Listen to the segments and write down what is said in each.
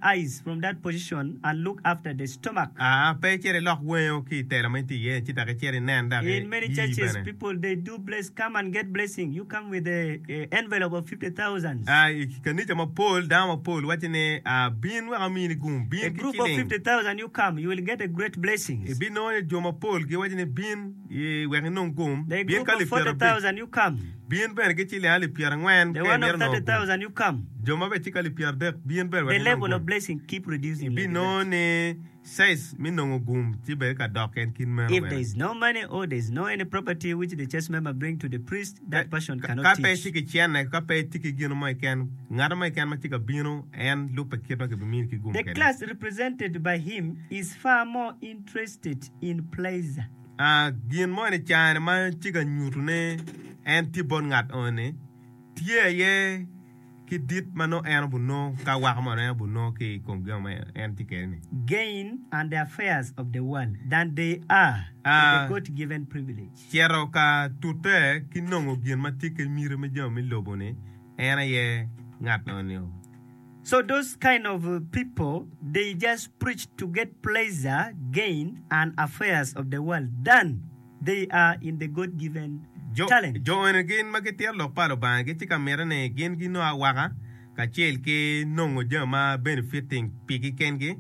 eyes from that position and look after the stomach. Aa, pe icit ilok wengo ki i tela ma in itye iye-ni ci dok icit inen dok In many iyi churches bene. people they do bless come and get blessing you come with a envelope of fifty thousands. Aa, i kanica mapol dano mapol wacci ni, Aa, bin wek amini gum, A bin ki group of ciling. fifty thousand you come you will get a great blessings. Ibinongo ni jo mapol giwacci ni, Bin. wek inong gum, bin ka alip pyerabic, bin bene ki ciling alip pyerangwen ka imito nongo gum, jo ma bene ci ki alip pyeradek, bin bene wek inong gum. Ibinongo ni size me nongo gum ci bedo ka dok en kit meno bene. Ka pe itye ki cene, ka pe itye ki gin mo keken, ngat mo keken ma tye ka bino, en lubbe kit ma kibimini ki gum kwede. State in place. Gin mo ni cani ma tye ka nyutu ni en tye bot ngat eno ni tye aye ki dit ma nongo en obunongo ka weko mono en obunongo ki ikom gin ma en tye kwede ni. Gain and the affairs of the world than they are to the God given privilege. Cito ka tute ki nongo gin ma tye ki miti me jami me lobo ni en aye ngat eno ni o. So those kind of pipo they just preach to get pleasure, gain and affairs of the world than they are in the God given talent. Jo eni gin ma gitito lok pa Lubanga gi ci ka mite ni gin ginongo awaka kacel ki nongo jami ma benefiting pigi kengi.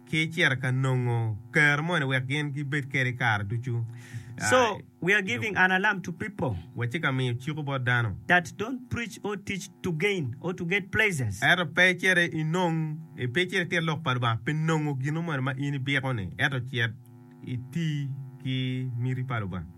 ki cito ka nongo ker moni wek gin gibed kede kare ducu. So we are giving an alarm to people. Watye ka miyo ciko bot dano. That don't preach or teach to gain or to get pleasures. Ento pe icito inong, pe icito itit lok pa Lubanga pi nongo gino moni ma in ibiko-ni, ento cit iti ki miti pa Lubanga.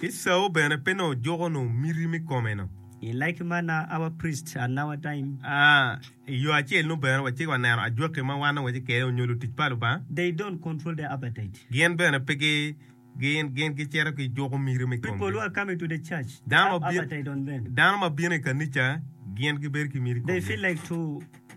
Ki cao bene pe nongo juko nongo miti me kome-nu. I like manner our priest at nour time. I yo acel-nu bene, wacito ka neno ajwaki ma wan ongeje kede onyo lutic pa Lubanga. They don't control their appetite. Gin bene pe gi, gin, gin gicito ki juko miti me komgi. People who are coming to the church, they Dano ma have bino, appetite on them. dano ma bino i kanica gin gibedo ki miti i They komgi. feel like to.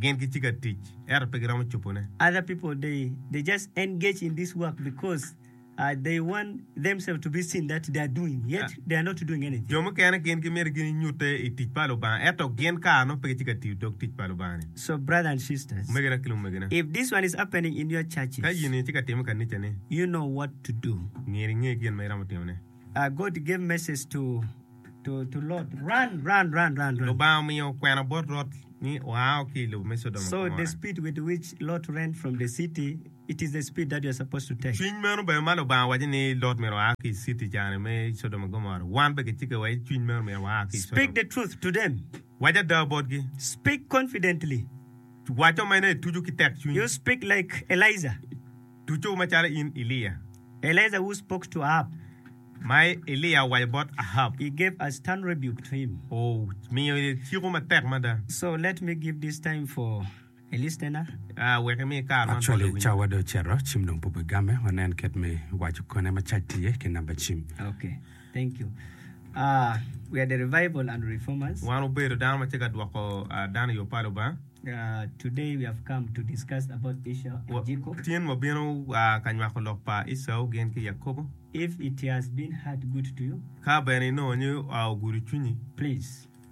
Gin gitye ka tic, ento pe giromo cobone. Other people they they just engage in this work because they want themselves to be seen that they are doing yet they are not doing anything. Jo mukene gin gimito ginyutte i tic pa Lubanga, ento gin kare nongo pe gitye ka tiyo dog tic pa Lubanga-ni. So brother and sisters, Omegina ki lumegina, if this one is happening in your churches, ka in-ni tye ka timme i kanicani, you know what to do. myero inge gin ma iromo timone. God gave message to Lubanga omiyo kwena bot Lot ni oao ki i lobo me Codoma ki Gomora. Cwiny meno bene ma Lubanga waco ni Lot myero oa ki i citi cani me Codoma ki Gomora, wan bene kicikke wa ni cwiny meno myero waa ki i Codoma. Wac ada botgi. Waco meno ituco ki tekcwiny. ducu macalo in Elia. Elijah who spoke to Ahab. Ma Elia owaco bot Ahab. He gave a stern rebuke to him. Omiyo ciko matek mada. So let me give this time for a listener. Wek imi kare man bot lawinyo. Actually cawa dong ocito, cim dong pube game, wanen kit me waco kone ma cac tye ki namba cim. Okay. Wan wubedo dano ma tye ka dwoko dano i yo pa Lubanga. Tin wabino ka nywako lok pa Ecau gin ki Yakobo. Ka bene inongo ni ogudo cwinyi.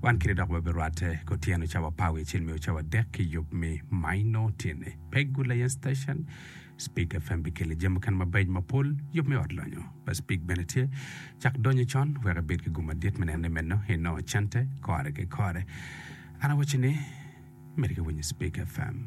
Wan kiti dok wabirwatte ki otyeno cawa pawi acel me ocawa adek ki yub me maino tyene. Pe Good Layen Station, Spig FM bikelle jami mukene mabeco mapol, yub me ot lonyo pa Spig bene tye. Cak donyo con wek ibed ki gum madit me neno ni meno inongo cente kore ki kore. An awacci ni, miti ki winyo Spig FM.